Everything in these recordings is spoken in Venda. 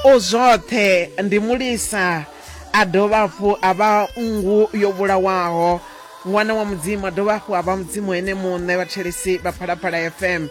u zwoṱhe ndi mulisa a dovha hafhu a vha nngu yo vhulawaho ṅwana wa mudzimu a dovha hafhu a vha mudzimu ene muṋe vhatshelisi vha phalaphala fm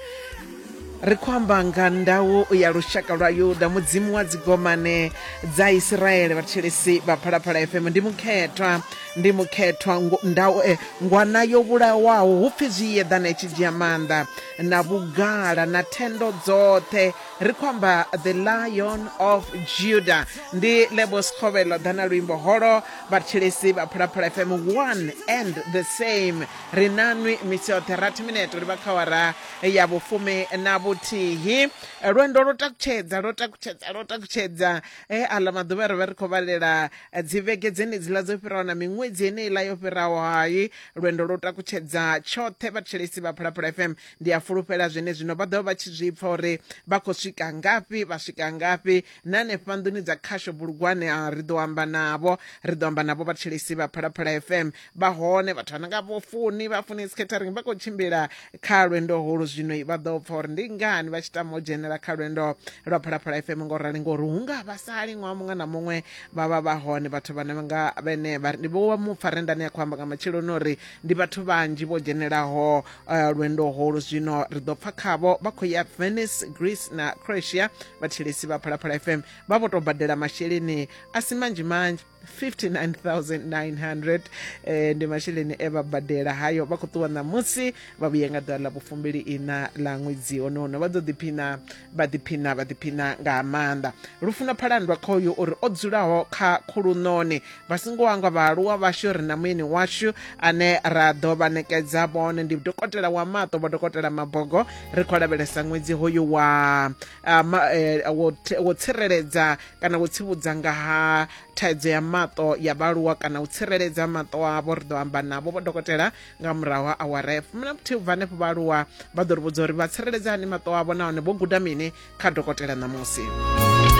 ri khou amba nga ndau ya lushaka lwa yuda mudzimu wa dzigomane dza isiraele vhatshelesi vha phalaphala fm ndi mukhethwa Ndi mukhethwa, ngo, nda, eh, ngwana yo vhulawaho, hu pfi zwi yeḓana i tshi dzhia maanḓa, na vhugala, na thendo dzoṱhe. Ri khou amba The Lion of Judah. Ndi Lebo Sekgovelo ḓa na luimbo holo. Vhathetshelesi vha Phalaphala FM, one and the same. Ri nanwi misi yoṱhe, rathi mineto ri vha kha awara ya vhufumi na vhuthihi. Lwendo lwo takutshedza, lwo takutshedza, lwo takutshedza. e aḽa maḓuvha ri vha ri khou vhalela eh, dzivhege dzenedziḽa dzo fhiraho na miṅwedzi eneiḽa yo fhiraho hai lwendo lwo takutshedza tshoṱhe vhathetshelesi vha phalaphala fm ndi a fulufhela zwene zwino vha ḓovha vha tshi zwi pfa uri vha khou swika ngafhi vha swika ngafhi na hanefha nḓuni dza khasho bulugwane a ri ḓo amba navho ri ḓo amba navho vhathetshelesi vha phalaphala fm vha hone vhathu vha nonga vho funi vha funi scattering vha khou tshimbila kha lwendo holu zwino vha ḓo pfa uri ndi ngani vha tshi tama u dzhenela kha lwendo lwa phalaphala fm ngo rali ngori hu nga vha sali ṅwaha muṅwe na muṅwe vha vha vha hone vhathu vhane nga vhene vha ri ndi vho mupfa rendani ya khou amba nga matsheloni uri ndi vhathu vhanzhi vho dzhenelaho eh, lwendo holu zwino ri ḓo pfa khavho vha khou ya venice greece na croatia vhathilisi vha phalaphala fm vha vho tou badela masheleni a si manzhi manzhi 59900 eh, ndi masheleni e vha badela hayo vha khou ṱuwa ṋamusi vha vhuye nga ḓuvha ḽa vhufumbili ina ḽa ṅwedzi honono vha ḓo ḓiphina vha ḓiphina vha ḓiphina nga maanḓa lufuno phalandwa kha uyu uri o dzulaho kha khuluṋoni vha songo wangwa vhaaluwa vhashu ri na muyeni washu ane ra ḓo vha ṋekedza vhone ndi dokotela wa maṱo vho dokotela mabogo ri khou lavhelesa ṅwedzi hoyu wa ah, ma- eh, wo th- wo tsireledza kana wo tsivhudza nga ha thaidzo ya maṱo ya vhaaluwa kana u tsireledza maṱo avho ri ḓo amba navho vho dokotela nga murahu ha awara ya fumi na vhuthihi ubva hanefho vhaaluwa vha ḓo ri vhudza uri vha tsireledza hani maṱo avho nahone vho guda mini kha dokotela ṋamusi